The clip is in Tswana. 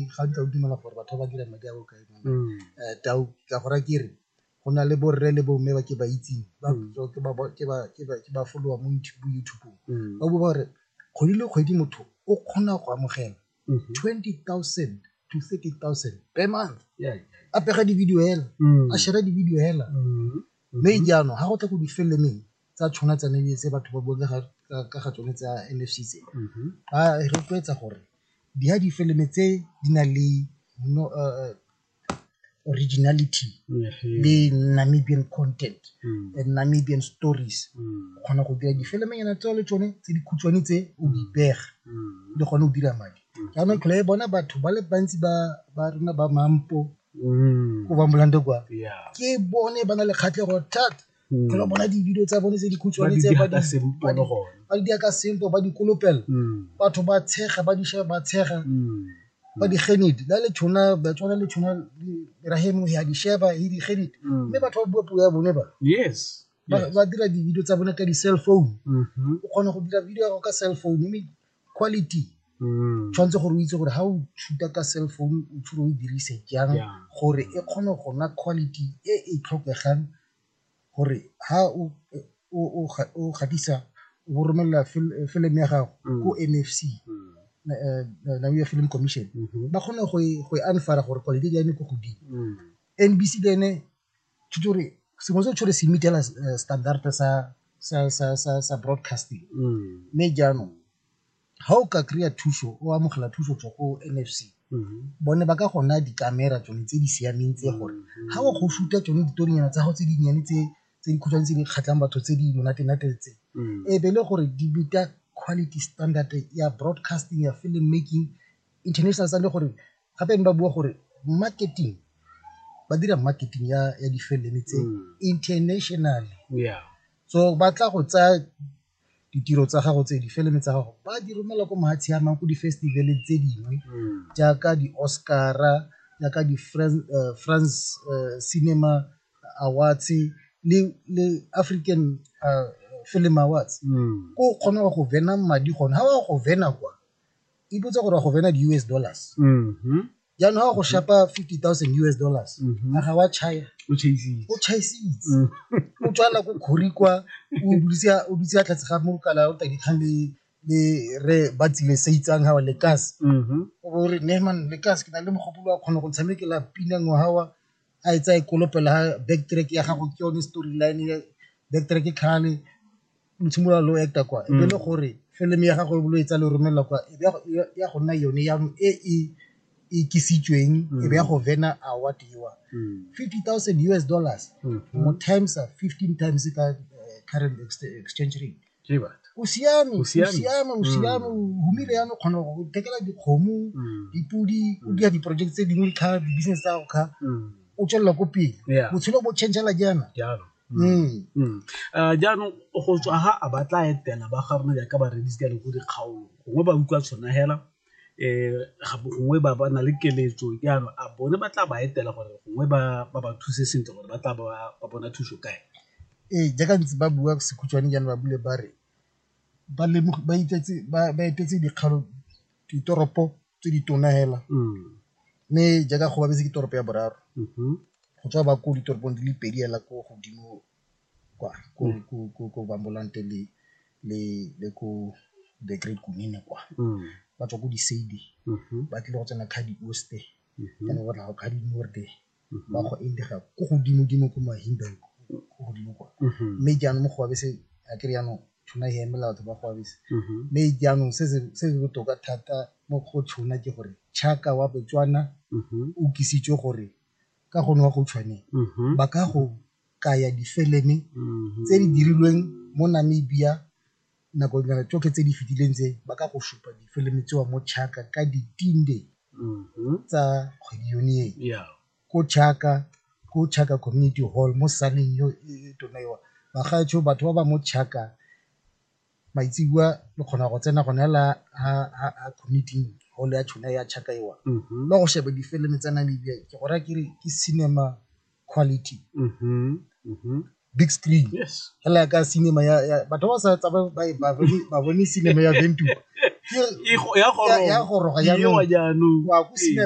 gantsi a o dumela gore batho ba ba dirang madi a bokae tau ka gore ke re go na le borre le bomme ba ke ba itseng ke ba folowa mo youtube ba bo ba gore kgwedi le kgwedi motho o kgona go amogela twenty thousand to thirty thousand per month a pega di-video hela a share-a di-video hela Mme jaanong ga go tla go difelemeng tsa tshwana tsa Namibia tse batho ba buang ka ga tsone tsa M_F_C tse ba rotloetsa gore di ha difeleme tse di nang le originality le Namibian content and Namibian stories o kgona go dira difeleme nyana tseo le tsone tse dikhutshwane tse o di pega le gone o dira madi jaanong tlhole e bona batho ba le bantsi ba rona ba Mampo o ba molande kwa ke bone ba na le kgatlhego thata mm. kgolo bona di-video tsa bone tse dikhutshwane tse ba di dia ka sempo ba di kolopela mm. batho ba tshega ba disha ba tshega mm. ba di genedi la le tshona ba tsona le tshona rahemo ya di sheba hi di genedi mme batho ba bua puo ya bone ba yes ba dira di-video tsa bone ka di-cell phone mm-hmm. o kgona go dira video ya go ka cell phone mme quality Mm. tshwanetse gore o itse gore ga o tshuta ka cell phone o tshwere o e dirise jang Yeah. gore e kgone go nna quality e e tlhokegang gore ha o o o ga- o gatisa o bo romelela fil- film ya gago Mm. ko mfc Mm. na- eh, eh, Namibia film commission Mhm. ba kgone go e- go e anfara gore quality ya ene ko godimo Mm. nbc le ene sengwe se tshwere se meet-ela standard sa broadcasting mme jaanong ga o ka kry-a thuso o amogela thuso go tswa ko N_F_C bone ba ka go naya di-camera tsone tse di siameng tse gore ga o go shoot-a tsone ditorinyana tsa gago tse dinnyane tse tse dikhutshwane tse di kgatlhang batho tse di monate-nate tse e be e le gore di meet-a quality standard ya broadcasting ya film making International sa le gore gape ba bua gore marketing ba dira marketing ya ya difilimi tse mm. international yeah so ba tla go tsaya ditiro tsa gago tse difilimi tsa gago ba di romela ko mahatshe a mang ko di-festival tse dingwe mm. jaaka di-oscara jaaka di-france uh, france, uh, cinema awards le, le african uh, film awards mm. ko kgona go vena madi gone ga wa go vena kwa ipotsa gore go bena di-us dollars mhm. jaanong ga go shapa fifty thousand us dollars mhm. a ga wa chaya o chaisitse mm. o tswala ko kgori kwa o dutse a tlhatse ga mokala o tadikgang le le re ba tsile se itsang ga wa lekas mhm. o bo re nehman lekas ke na le mogopolo wa kgona go tshamekela pina ngwaga wa a e tsa e kolopela ha backtrack ya gago ke yone storyline backtrack e kgale lo tshimolola lo acta kwa e le gore film ya gago lo etsa le romelela kwa e be ya go nna yone ya e e ikisitsweng e be ya go vena award ewa 50000 us dollars mo times 15 times ka current exchange rate ke batho o siame o siame o siame o humile yana o kgona go thekela dikgomo dipodi o dira di-project tse dingwe kha di-business tsa go kha o tswelela ko pele botshelo bo changela jaana Mm. Mm. Eh, jaanong go tswa ha a ba tla etela ba ga rona jaaka bareedisi ka lego dikgaolo gongwe ba utlwa tshwana hela um gongwe ba ba na le keletso jaanong a bone ba tla ba etela gore gongwe ba ba ba thuse sentle gore ba tla ba ba bona thuso kae ee jaaka ntse ba bua sekhutshwane jaana ba bule ba re ba lemogi- ba itetse- ba ba etetse dikgalo ditoropo tse di tona hela mme jaaka go babetse ke toropo ya boraro go tswa ba ko ditoropong di le pedi hela ko godimo kwa ko bambolante le le le ko the great kunene kwa ba tswa ko di-sady ba tlile go tsena kgadi oste and go tla go kgadi norde ba go indega ko godimo-dimo ko mahimbeng ko godimo kwa mme jaanong mo go abese a kere jaanong tshona e emela batho ba go abese mme jaanong se se botoka thata mo go tshona ke gore chaka wa botswana o kisitswe gore ka gone wa go tshwaneng ba ka go kaya difeleme tse di dirilweng mo namibia nako dingata tsotlhe tse di fetileng tse ba ka go supa difilimi tsewa mo chaka ka ditinde tsa kgwedi yone e Yeah. ko chaka ko chaka community hall mo saneng yo e e tona yo bagaetsho batho ba ba mo chaka maitsebua le kgona go tsena gone la ha ha- ha community hall ya tshona ya chaka ewa Mhm. le go sheba difilimi tsa namibia ke go raya ke re ke cinema quality big screen Yes. hela ka cinema ya, ya batho ba sa tsaba ba ba bone- ba bone cinema ya Ventura Ke- E go- ya ya- ya goroga goroga jaanong. Ewa jaanong. wa go Ee. cinema